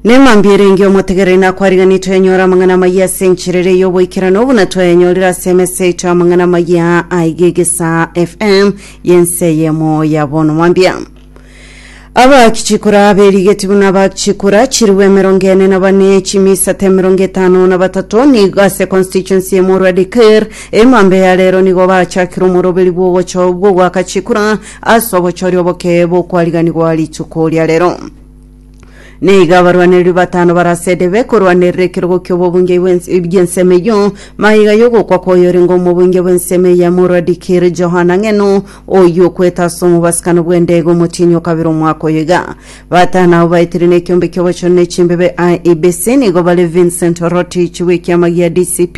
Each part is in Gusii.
Neng'ambi erenge omotegereri nakwariganetwe yanyora amang'ana amayia ase enchera ere y'oboikerano buna twayanyorire ase emesa yaito y'amang'ana amayia aiga egesa fm yense yemo ya bono mwambia abachikura berigeti buna abachikura chirigwe emerongo ene na bane chimisate emerongo etano na batato nigo ase constituency emorwa deker emambe ya rero nigo bachakire omoroberi bw'ogocho bw'ogwaka chikura Ase obochori obokee bokwariganigwa rituko ria rero nigo abarwanereria batano barasede bekorwanerera ekerogo ki'obobunge bw'ensemo eyio magega y'ogokwa kw'oyorenge omobunge bw'ensemo eye morwa dikiri johana ng'eno oyio okwete ase omobasikano bw'endege omotienyi okabera omwaka oyo iga batano abo baetire n'ekiombe ki'obochori n'echimbebe IEBC nigo bare Vincent Rotich w'ekiama gia DCP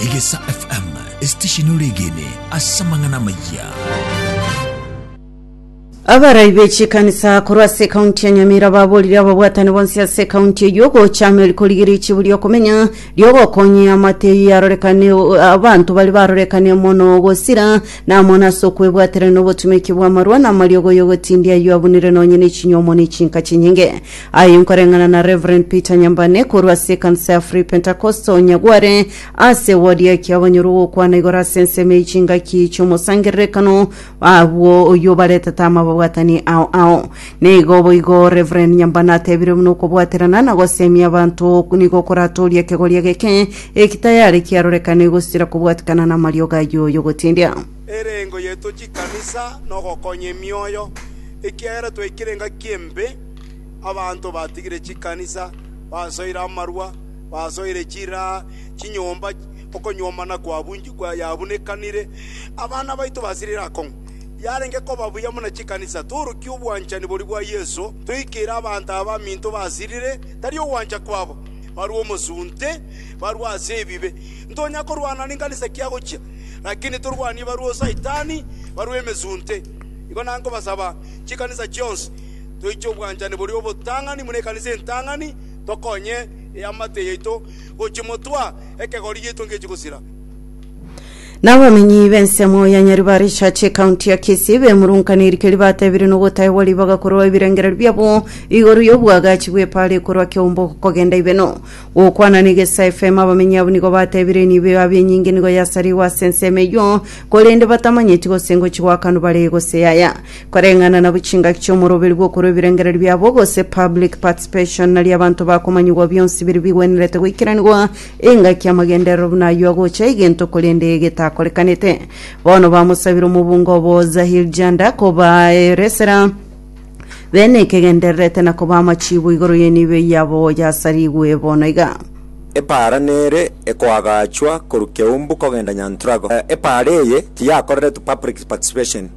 Egesa FM, esitesheni oregene ase amang'ana amayia. Abarai be chikanisa korwa ase ekaunti ya Nyamira baborire ababwatani bonsi ase ekaunti eyio gocha amo eri korigeria echibu riokomenya riogokonyia amateyi arorekane abanto bari barorekane mono gosira na amo nase okwebwaterania obotumeki bw'amarwa na amariogo y'ogotindia ayio abunire nonye nechinyuomo ne chinka chinyinge Aye nkoreng'ana na Rev. Peter Nyambane korwa ase ekanisa ya Free Pentecostal Nyagware ase ewodi y'ekiabanyorwa ogokwana igoro ase ensemo y'echingaki chi'omosangererekano agwo oyio obaretete amababwatani ao ao. Nigo boigo Rev. Nyambane atebire buna okobwaterana na gosemia abanto nigo koratoorie ekegoria geke eki tayare kiarorekane gosira kobwatikana namariogo ayio y'ogotindia. Erengo yaito chikanisa nogokonya emioyo, ekiagera twaikire engaki embe. Abanto batigire chikanisa, basoire amarua, basoire chiraa, chinyomba, okonyuomana yabunekanire, abana baito basirire akong'u. Yarenge koba buya buna chikanisa torukia obwanchani boria bwa Yeso, toikeire abanto aba baminto basirire, tari ogwancha kwabo, barue omosunte, barue ase ebibe. Ntonya korwana nenkanisa ki agochia, lakini torwanie barue o Saitani, barue emesunte. Igo nankobasaba chikanisa chionsi, toiche obwanchani boria obotang'ani buna ekanisa entang'ani, tokonye eamate yaito gochimotwa, ekegori giaito ngechi gosira. Nabamenyi b'ensemo ya Nyaribari Church ekaunti ya Kisii bemurunkaniri keria batebire nogotaegwa ribaga korwa ebirengererio biabo igoro y'obwagachi bw'epara ekorwa Keumbu kogenda Ibeno. Gokwana na Egesa FM abamenyi abwo nigo batebire enibo yabo enyinge nigo yasarigwe ase ensemo eyio korende batamanyeti gose ngochi gwakanwa bare gose yaya. Koreng'ana na bwe chingaki chi'omoroberi bw'okorwa ebirengererio biabo, gose public participation, nario abanto bakomanyigwa bionsi biria bigwenerete goikeranigwa, engaki y'amagenderero buna ayio agocha egento korende getakorekanete. Bono bamosabire omobunga obo Zahir Janda kobaeresera bene ekegendererete na koba amachiibo igoro y'enibo yabo yasarigwe bono iga. Epaara nere ekoagachwa korwa Keumbu kogenda Nyantrago. Epaara eye tiyakoreretwe public participation.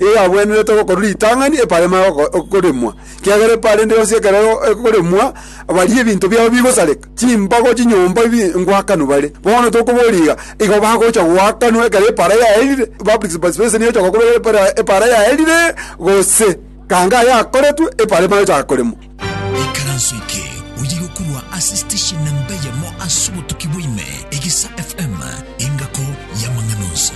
Igo yagwenerete gokorwa ritang'ani eparema oko- okoremwa, ekiagera epara ende yonsi ekero ego- ekoremwa, baria ebinto biabo bigosareka, chimbago, chinyomba, ebi ngwakanwa bare. Bono tokoboria iga, igo bagocha goakanwa ekero epara yaerire, public participation egocha gokorwa ekero epara- epara yaerire, gose kanga yakoretwe eparema egocha koremwa. Ikaranso eke oye gokorwa ase station namba eyemo ase obotuki bwa ime, Egisa FM, engako y'amang'ana onsi.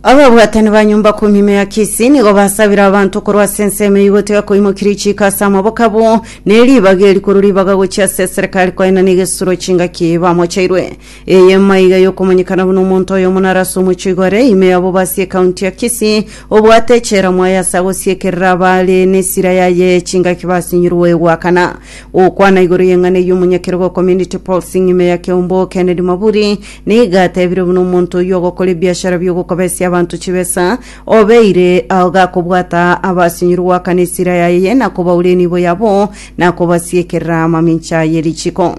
ababwatani ba nyumba kumi ime ya kisi nigo basabire abanto korwa ase ensemo eyio goteba koimokirie chiiko ase amaboko abo ne ribaga eri korwa ribaga gochia ase eserekari koenana egesuro chingaki bamochairwe Eye maiga yokomanyekana buna omonto oyomo naro ase omochie igore ime ya Bobasi ekaunti ya Kisii, obwate echela mwaye ase agosiekerera abare nesira yaye chingaki basinyirwe goakana. Gokwana igoro y'eng'ana eyio omonyakerogo Community Policing ime ya Kiombo Kennedy Maburi nigo atebire buna omonto oyio ogokora ebiashara biogokobesia abanto chibesa obeire agakobwata abasinyirwe goakana esira yaye nakobaura enibo yabo nakobasiekerera amamincha yerichiko.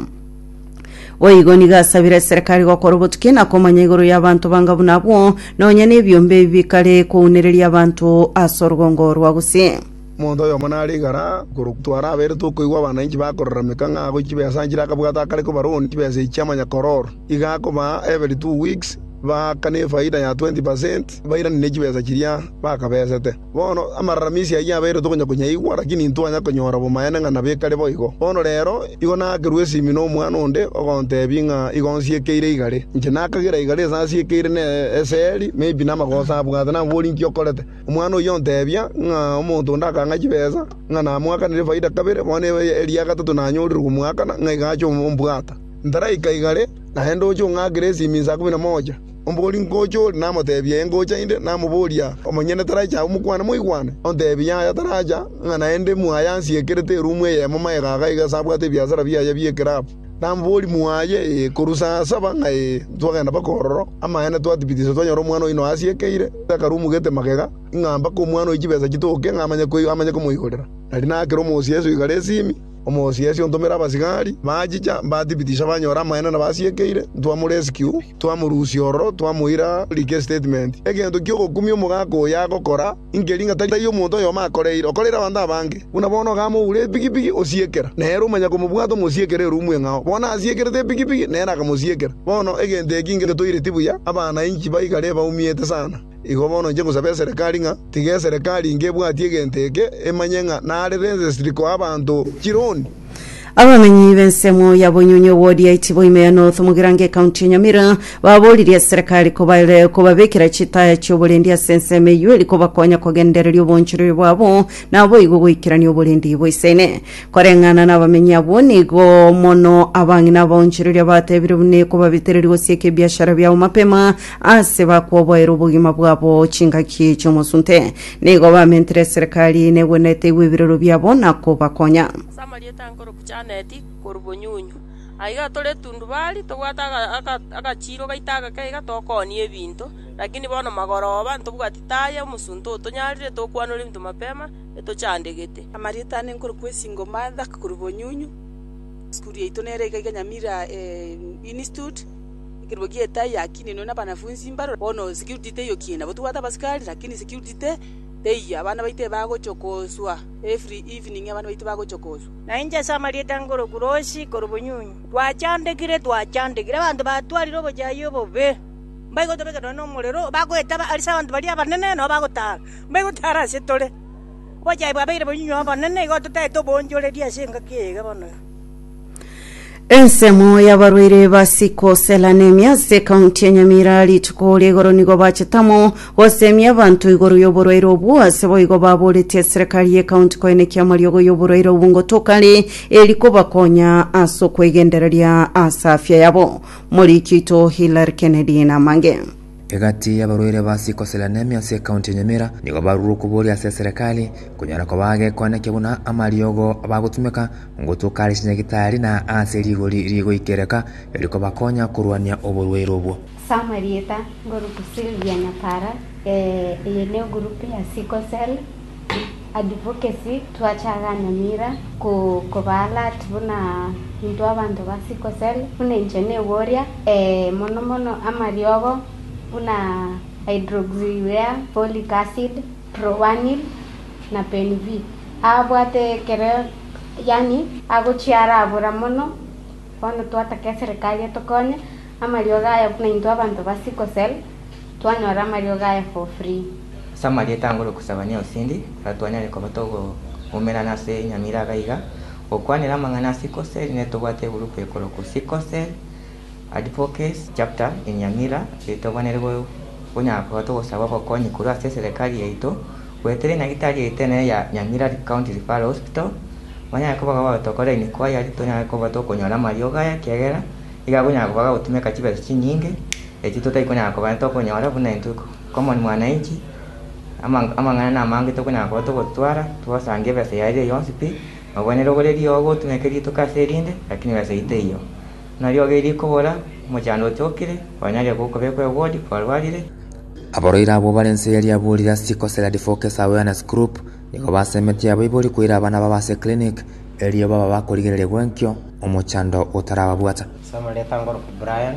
Boigo nigo asabire eserekari gokora obotuki na komanya igoro y'abanto banga buna abwo, nonya nebiombe ebi bikare kounereria abanto ase orgongo rwa gose. Omonto oyomo nare igara korokwa. Twaraberete okoigwa abananchi bakorarameka ng'a agochie chibesa nchire akabwata akare koba loan chibesa echi chiamanya koror. Iga akoba every two weeks baakane efaida ya twenty percent bairanie ne chibesa chiria bakabesete. Bono amararamisi ayio yabeire tokonya konyaigwa, lakini intwanya konyora bomaene ng'a nabio ekare boigo. Bono reero igo naakerwa esimi nomwana onde, ogontebia ng'a igo nsiekeire igare. Inche nakagera igare ase asiekeire ne ase eri, maybe namagoso abwate nabori inki okorete. Omwana oyio ontebia ng'a omonto onde akang'a chibesa, ng'a namoakanire efaida kabere, bono eri ya gatato nanyorire komoakana, ng'a iga ache ombwata. Ntaraika igare, naende oche ong'akere esimi inse ikomi na moja. Omogori ngocha ore, namoteebia, Ee, ngocha inde. Namoboria, Omonyene taraiche agwo mokwane moigwane? Onteebie, Yaya, taracha, ng'a naende mwaye ansiekerete eruumu eyemo magega aga iga ase abwate ebiasara biaye bi'ekerabu. Namoboria, Mwaye? Ee, korwa saa saba ng'a ee, ntwagenda mpaka ororo. Amaene, twatibitisa twanyora omwana oino asiekeire takarumugete magega, ng'a mpaka omwana oyo chibesa chitoke ng'a amanye komoigorera. Nari naakera omosieso igare esimi, omosieso ontomera abasigari, bachicha, mbatibitisa banyora amaene nabo asiekeire, ntwa morescue. Twamorusia ororo, twamoira like statement, egento ki'ogokumia omogaka oyo agokora, inki ring'a tari omonto oyomo akoreire, okoreire abanto abange? Buna bono ogamoura epigipigi, osiekera, nere omanya komobwata omosiekere erumu eng'ao. Bono asiekerete epigipigi, nere akamosiekera. Bono egento eki ngetoireti buya, abana inki baigare baumiete sana? Igo bono inche ngosaba eserekari ng'a tiga eserekari inge ebwatie egento eke emanye ng'a nare registri koa abanto chironi. Abamenyi b'ensemo ya Bonyonyi ewodi ya Itibo ime ya North Mugirango ekaunti ya Nyamira baboririe eserekari kobare kobabekera chitaya chi'oborendi ase ensemo eyio eri kobakonya kogendereria obonchoreria bwabo naboigo goikerania oborendi boisaine. Koreng'ana nabamenyi abwo nigo mono abang'ina abaonchoreria batebire buna ekobabitereria gosieka ebiashara biabo mapema Aase bakoboera obogima bwabo chingaki chi'omosunte, nigo bamentire eserekari negwenerete igwe ebirero biabo na kobakonya. Ase amarieta ankoro Kuchaneti korwa Bonyunyu. Aiga tore tundubari, tobwate aga- aga- agachiiro gaito agake iga tokoonia ebinto, lakini bono magoroba ntobwati taya omosunte otonyarire tokwanora ebinto mapema etochandegete. Amarieta ane nkoro Kwesingo Martha korwa Bonyunyu. Esukuru yaito nere iga iga Nyamira Institute. Ekerubo gi'etai yakiininwe nabanafunsi mbarore. Bono security teyokiine, nabo tobwate abasikari, lakini security teyia. Abana baito ebagochia koswa, every evening abana baito bagochia koswa. Na inche ase amarieta ngoro Kurosi, korwa Obunyunyu. Twachandekire, twachandekire, abanto batwarire obochayia obobe. Mbaigo tobeke nonya nomorero, bagoeta ase abanto baria abanene, nabo bagotara, mbaigo tara ase tore. Obochayia bwabeire bonyinyi obonene, igo totagete oboonchoreria ase engaki eye iga bono. Ensemo y'abarwaire ba sickle cell anemia ase ekaunti ya Nyamira rituko ria igoro nigo bachetamo gosemia abanto igoro y'oborwaire obwo ase boigo baboretie eserekari y'ekaunti koenekia amariogo y'oborwaire obwo ngotokare eri kobakonya ase okwegendereria ase afya yabo. Moriki oito Hilary Kennedy Namange. Egati y'abarwaire ba sickle cell anemia ase ekaunti ya Nyamira nigo barure okoboria ase eserekari konyora koba agekwanekio buna amariogo bagotumeka ngotuka are chinyagitari na ase rigori rigoikereka erikobakonya korwania oborwaire obwo. Ase amarieta, Ngoruku Sylvia Nyapara, Ee, eye ne egurupu ya sickle cell. Advocacy twachaaga Nyamira ko koba alert buna intwe abanto ba sickle cell buna inche neboria ee mono mono amariogo buna hydroxyurea, folic acid, proanil na penv abwate ekero yaani agochia arabora mono bono twataka eserekari etokonye amariogo aya buna intwe abanto ba sickle cell. Twanyora amariogo aya for free. Ase amarieta angoro kosaba ne osindi, ora twanyare koba togoumerana ase enyamira iga iga, gokwanera amang'ana a sickle cell ne tobwate egurupu ekorokwa Sickle Cell Advocacy Chapter Enyamira eye togwenerire gonyara koba togosaba obokonyi korwa ase eserekari yaito, goetera enyagitari yaito enene ya Nyamira County Referral Hospital, banyare koba gaba gotokora inquiry tonyare koba tokonyora amariogo aya ekiagera nigo agonyara koba gagotumeka chibesa chinyinge Eki totaikonyara kobana tokonyora buna intwe komoni mwananchi, amang'ana namange tokonyara koba togotwara twosange ebesa yaye eria yonsi pi, obwe nerogoreria oo gotumeka rituko ase erinde, lakini besa eye teiyo. Buna riogo erio rikobora, omochando ochokire, oranyare gokobekwa ewodi kwarwarire. Abarwaire abwo bare inse eria riaborire ase chikosera Defocase Awareness Group nigo basemetie abaibori koira abana babo ase eclinic erio baba bakorigereria gwenkio omochando otarababwata. Ase amareta ngoroku Brian.